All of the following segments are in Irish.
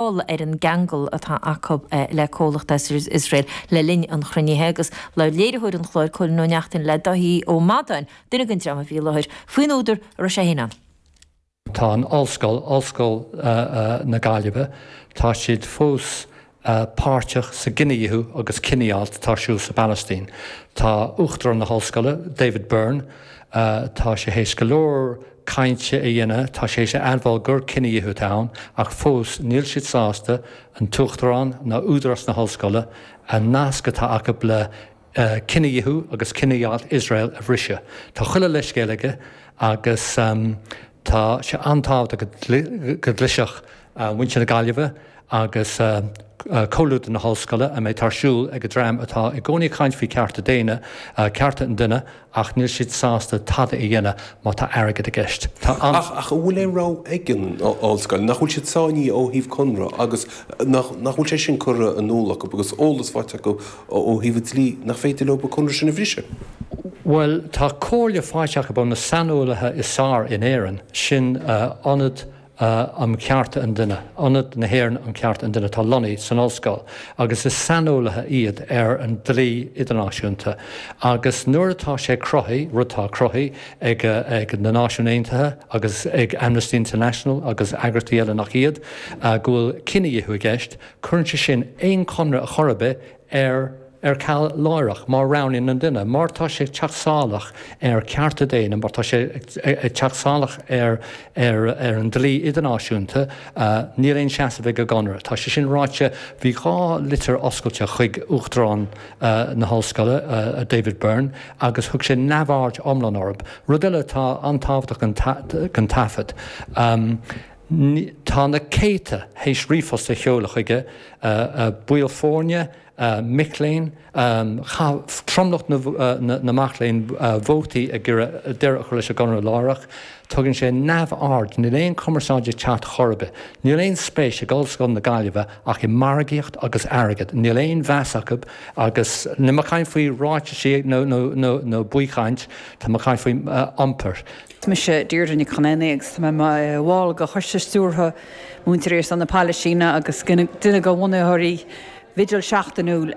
dul ar an gceangal atá acu le comhlacht as Iosrael le linn an chruinnithe agus labhair léiritheoir an chláir, Cóilín Ó Neachtain, le Dáithí Ó Madáin, duine den dream a bhí i láthair, faoin údar a raibh sé féin ann. Tá an Ollscoil, Ollscoil na Gaillimhe, tá siad fós páirteach sa gcinedhíothú agus cinedheighilt atá ar siúl sa bPalaistín. Tá Uachtarán na hOllscoile, David Burn, tá sé théis go leor cainte a dhéanamh, tá sé a admháil gur cinedhíothú atá ann ach fós níl siad sásta an tUachtarán ná Údarás na hOllscoile an nasc atá acu le cinedhíothú agus cinedheighilt Iosrael a bhriseadh. Tá chuile leithscéal aige agus tá sé an-tábhachtach go gcloisfeadh muintir na Gaillimhe agus comhluadar na hOllscoile an méid atá ar siúl ag an dream atá i gcónaí ag caint faoi chearta daonna, cearta an duine ach níl siad sásta tada a dhéanamh má tá airgead i gceist. Tá an. Ach an bhfuil aon rogha ag an Ollscoil? Nach bhfuil siad sáinnithe ó thaobh conradh agus nach bhfuil sé sin curtha in iúl acu agus eolas faighte acu ó thaobh an dlí nach féidir leo an conradh sin a bhriseadh? Bhuel tá comhairle faighte acu ó na saineolaithe is fearr in Éirinn, sin Ionad. a um Chearta an Duine, Ionad na hÉireann um Chearta an Duine atá lonnaithe san Ollscoil agus is saineolaithe iad ar an dlí idirnáisiúnta agus nuair atá sé cruthaithe, rud atá cruthaithe ag na Náisiúin Aontaithe agus ag Amnesty International agus eagraíochtaí eile nach iad, go bhfuil cinedhíothú i gceist, cuireann sé sin aon chonradh ar chor ar bith ar. ar ceal láithreach má roghnaíonn an duine, má tá sé ag teacht salach ar chearta daonna, má tá sé ag teacht salach ar an dlí idirnáisiúnta, níl aon seasamh ag an gconradh. Tá sé sin ráite, bhí dhá litir oscailte chuig Uachtarán na hOllscoile, David Burn, agus thug sé neamhaird iomlán orthu. Rud eile atá an-tábhachtach don taifead, tá na céadta théis ríomhphost a sheoladh chuige, baill foirne, mic léinn. Chaith tromlach na mac léinn vóta ag iarraidh deireadh a chur leis an gconradh láithreach. Tugann sé neamhaird. Níl aon chumarsáid ag teacht chor ar bith. Níl aon spéis ag Ollscoil na Gaillimhe ach i margaíocht agus airgead. Níl aon mheas acu agus, níl mé ag caint faoi ráitisí nó baothchaint, tá mé ag caint faoi iompar. Is mise Deirdre Nic Chonaonaigh agus tá mé i mo bhall de Choiste Stiúrtha Múinteoirí ar son na Palaistíne agus duine de bhunaitheoirí bhigil seachtainiúil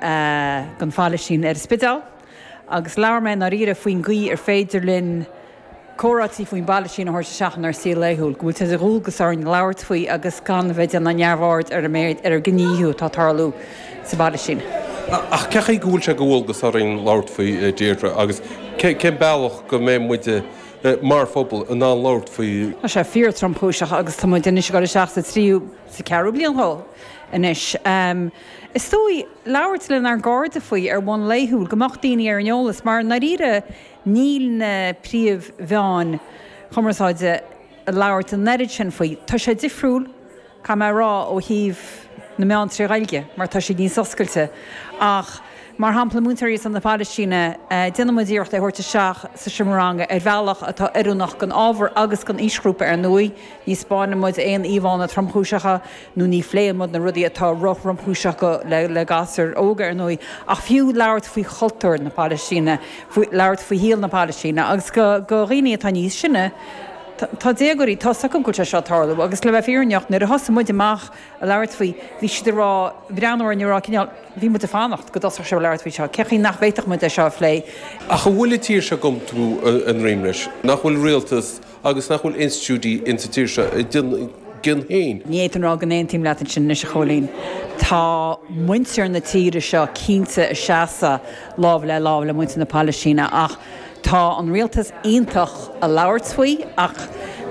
don Phalaistín ar an Spidéal agus labhair mé i ndáiríre faoin gcaoi ar féidir linn comhráití faoin bPalaistín a thabhairt isteach inár saol laethúil, go bhfuil sé de dhualgas orainn labhairt faoi agus gan a bheith ag déanamh neamhaird ar an méid, ar an gcinedhíothú atá ag tarlú. sa bhaile sin. Ach cén chaoi go bhfuil sé de dhualgas orainn labhairt faoi, Deirdre? Agus cén bealach go mbeidh muide, mar phobal, in ann labhairt faoi? Tá sé fíor-tromchúiseach agus tá muid anois ag dul isteach sa tríú, sa cheathrú bliain dhó anois. Is dóigh, labhairt lenár gcairde faoi ar bhonn laethúil, go mbeadh daoine ar an eolas, mar i ndáiríre níl na príomh-mheáin chumarsáide ag labhairt an oiread sin faoi. Tá sé difriúil. caithfidh mé a rá, ó thaobh na meán trí Ghaeilge mar tá siad níos oscailte. Ach mar shampla múinteoirí ar son na Palaistíne, déanann muid iarracht é a thabhairt isteach sa seomra ranga ar bhealach atá oiriúnach don ábhar agus don aoisghrúpa ar ndóigh. Ní spáineann muid aon íomhánna tromchúiseacha nó ní phléann muid na rudaí atá róthromchúiseach le gasúir óga ar ndóigh ach fiú labhairt faoi chultúr na Palaistíne, faoi labhairt faoi shaol na Palaistíne agus do dhaoine atá níos sine, Tá, tá déagóirí tá a fhios acu go bhfuil sé seo ag tarlú agus le bheith fírinneach nuair a thosaigh muid amach ag labhairt faoi, bhí siad ag rá, ag breathnú orainn ag rá cineál, bhí muid ag fanacht go dtosódh sibh ag labhairt faoi seo, cén chaoi nach bhféadfadh muid é seo a phlé? Ach an bhfuil an tír seo ag iompú a droim leis? Nach bhfuil rialtas agus nach bhfuil institiúidí in sa tír seo ag déanamh a gcion féin? Ní fhéadfainn rá go n-aontaím leat ansin anois, a Chóilín. Tá muintir na tíre seo cinnte ag seasamh lámh le lámh le muintir na Pailistíne ach, Tá an rialtas iontach ag labhairt faoi ach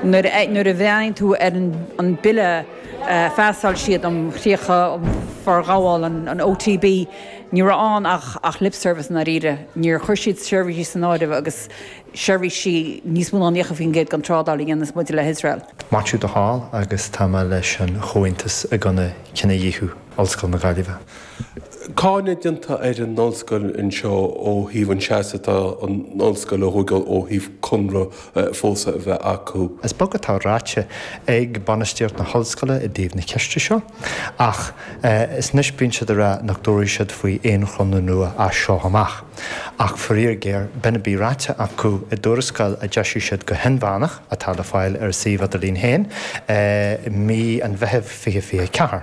nuair a bhreathnaíonn tú ar an bille a phassáil siad um chríocha faoi fhorghabháil an OTB, ní raibh ann ach lip service i ndáiríre. Níor chuir siad seirbhísí san áireamh agus seirbhísí níos mó ná 90% den trádáil a dhéananns muid le hIosrael. Maitiú de Hál agus tá mé leis an Chomhaontas i gcoinne cinedhíothú Ollscoil na Gaillimhe. Cáineadh déanta ar an ollscoil anseo ó thaobh an seasamh atá an ollscoil a thógáil ó thaobh conradh fós a bheith acu. Is beag atá ráite ag bainistíocht na hollscoile i dtaobh na ceiste seo ach is nós bíonn siad ag rá nach dtabharfaidh siad faoi aon chonradh nua as seo amach. Ach faraor géar b'in a bhí ráite acu i dtuarascáil a d'eisigh siad go hinmheánach, atá le fáil ar a suíomh idirlín féin, i mí an Mheithimh 2024.